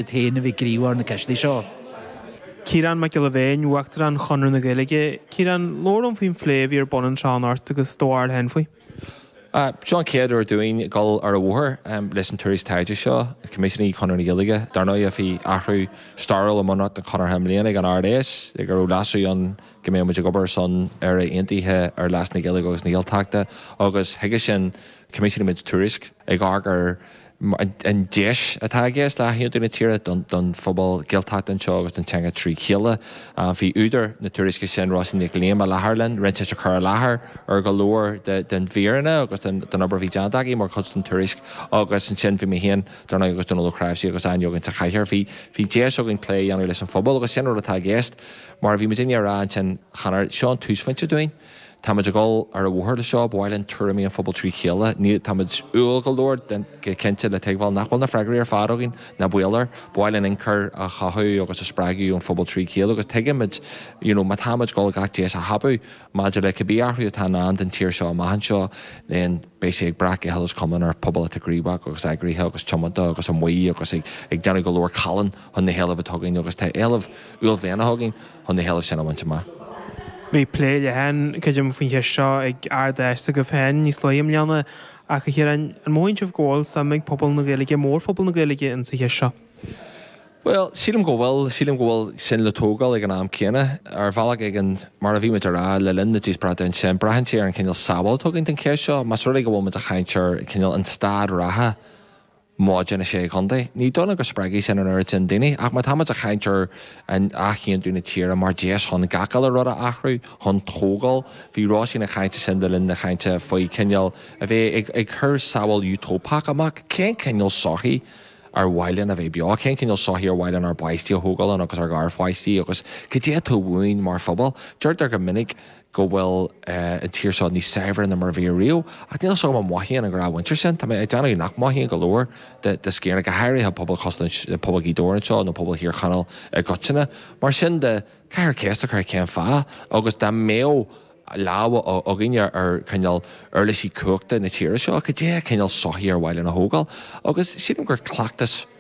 iad féin a bhí ag gníomhú ar na ceistí seo. Ciarán Mac Giolla Bhéin, Uachtarán Chonradh na Gaeilge. Ciarán, labhair liom faoin phlé a bhí ar bun anseo anocht agus do bharúil féin faoi. Seo an chéad uair dúinn dul ar an bhóthar leis an tuairisc taighde seo a choimisiúnaigh Conradh na Gaeilge. Dar ndóigh bhí athrú stairiúil i mbunreacht an Chonartha i mbliana ag an Ard-Fheis le go raibh leasú ann go mbeadh muid ag obair ar son Éire Aontaithe ar leas na Gaeilge agus na Gaeltachta agus chuige sin choimisiúnaigh muid tuairisc ag amharc ar an deis atá i gceist le hathaontú na tíre don phobal Gaeltachta anseo agus don teanga trí chéile. Bhí údar na tuairisce sin, Róisín Nic Liam, i láthair linn, rinne sí cur i láthair ar go leor de na míreanna agus den obair a bhí déanta aici mar chuid den tuairisc agus ansin bhí mé féin, dar ndóigh, agus Dónal Ó Cnáimhsí agus Áine againn sa chathaoir. Bhí deis againn plé a dhéanamh leis an phobal agus sin rud atá i gceist mar a bhí muidinne a rá ansin cheana, seo an túsphointe dúinn. Táimid ag dul ar an bhóthar leis seo, ba mhaith linn tuairimí an phobail trí chéile. Níl, táimid umhal go leor cinnte le tuigbheáil nach bhfuil na freagraí ar fad againn, ná baol air. Ba mhaith linn inchur a chothú agus a spreagadh ón phobal trí chéile agus tuigimid you know má táimid ag dul gach deis a thapú maidir le cibé athrú atá i ndán don tír seo amach anseo, then beidh sé ag brath go huile is go hiomlán ar phobal atá gníomhach agus eagraithe agus tiomanta agus amuigh agus ag déanamh go leor callán chun na héilimh atá againn agus tá éilimh uaillmhianach againn. chun na héilimh sin a bhaint amach. Bhí plé leathan, creidim, faoin cheist seo ag Ard-Fheis s'agaibh féin níos luaithe i mbliana, ach, a Chiaráin, an mothaíonn sibh go bhfuil suim ag pobal na Gaeilge, mórphobal na Gaeilge, insa cheist seo? Bhuel, sílim go bhfuil. Sílim go bhfuil sin le tógáil ag an am céanna. Ar bhealach éigin, mar a bhí muid a rá le linn na díospóireachta ansin, braitheann sé ar an chineál samhail a thugann don cheist seo. Más rud é go bhfuil muid ag caint ar chineál an staid reatha, móide na Sé Chontae. Ní dóigh liom go spreagfaidh sin an oiread sin daoine, ach má táimid ag caint ar athaontú na tíre mar dheis chun gach uile rud a athrú, chun tógáil, bhí Róisín ag caint ansin le linn na cainte faoi chineál a bheith ag cur samhail Utóipeach amach, cén cineál sochaí ar mhaith linn a bheith beo, cén cineál sochaí ar mhaith linn ár bpáistí a thógáil ann agus ár gharpháistí agus cad é atá uainn mar phobal. Deirtear go minic. go bhfuil an tír seo níos saibhre ná mar a bhí riamh, ach níl a fhios agam an mothaíonn an ghnáthmhuintir sin. Tá mé ag déanamh nach mothaíonn go leor de sciar, go háirithe pobal cosúil le pobal Ghaoth Dobhair anseo, nó pobal Thír Chonaill i gcoitinne. Mar sin de, caithfear ceist a chur cén fáth, agus dá mbeadh lámha againne ar chineál uirlisí cumhachta na tíre seo, cad é cineál sochaí ar mhaith linn a thógáil? Agus sílim gur cleachtas.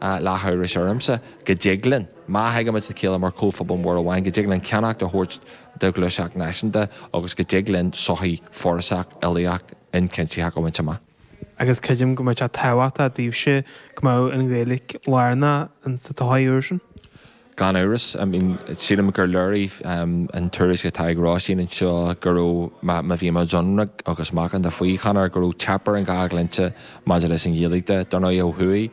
lá amhrais ormsa go dtig linn, má thagaimid le chéile mar chomhphobal mór amháin, go dtig linn ceannacht a thabhairt do ghluaiseacht náisiúnta agus go dtig linn sochaí forásach uilíoch ionchuimsitheach a bhaint amach. Agus creidim go mbeidh sé tábhachtach daoibhse go mbeadh an Ghaeilge lárnach sa tsochaí úr sin. Gan amhras, sílim gur léirigh an tuairisc atá ag Róisín anseo go raibh, má bhíonn muid ionraic agus macánta faoi, chan fheadar, go raibh teip ar an dhá dhlínse maidir leis an Ghaeilge de. Dar ndóigh, ó thuaidh,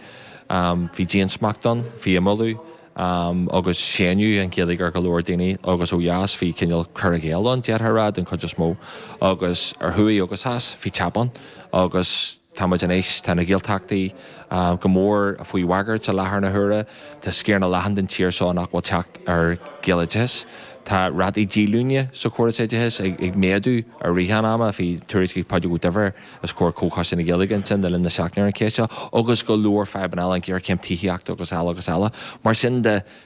bhí diansmacht ann, bhí imeallú agus séanadh an Ghaeilge ar go leor daoine agus ó dheas bhí cineál cur i gcéill ann, d'fhéadfá a rá, den chuid is mó. Agus ar thuaidh agus theas, bhí teip ann agus. Tá muid anois, tá na Gaeltachtaí go mór faoi bhagairt i láthair na huaire, tá sciar an-leathan den tír seo nach bhfuil teacht ar Ghaeloideachas. Tá rátaí díolúine sa chóras oideachais ag méadú i rith an ama, bhí tuairisc ag Pádraig Ó Duibhir os comhair Chomhchoiste na Gaeilge ansin le linn na seachtaine ar an cheist seo, agus go leor fadhbanna eile, an ghéarchéim tithíochta agus eile agus eile. Mar sin de,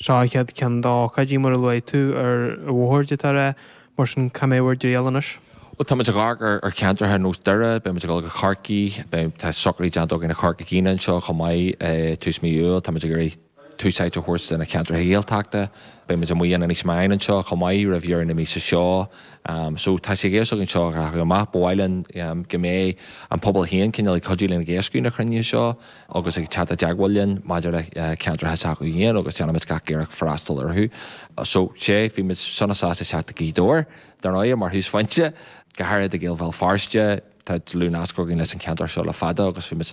Seo an chéad cheann de na hócáidí, mar a luaigh tú, i nGaoth Dobhair, mar sin cá mbeidh bhur dtriall anois? Bhuel, tá muid ag amharc ar cheantracha ar nós Doire, beidh muid ag dul go Corcaigh, beidh, tá socraithe déanta againn i gCorca Dhuibhne anseo chomh maith tús mhí Iúil, tá muid ag iarraidh tús áite a thabhairt do na ceantracha Gaeltachta, beidh muid amuigh in Inis Meáin anseo chomh maith roimh dheireadh na míosa seo. So, tá sé ag iarraidh é seo a ghlacadh amach, ba mhaith linn go mbeadh an pobal féin cineál ag cuidiú linn ag éascú na cruinnithe seo. agus ag teacht i dteagmháil linn maidir le ceantracha s'acu féin agus déanfaidh muid gach iarracht freastal orthu. So, sea, bhí muid sona sásta teacht go Gaoth Dobhair, dar ndóigh, mar thúsphointe, go háirid do Ghaeil Bhéal Feirste, tá dlúthnasc againn leis an cheantar seo le fada agus bhí muid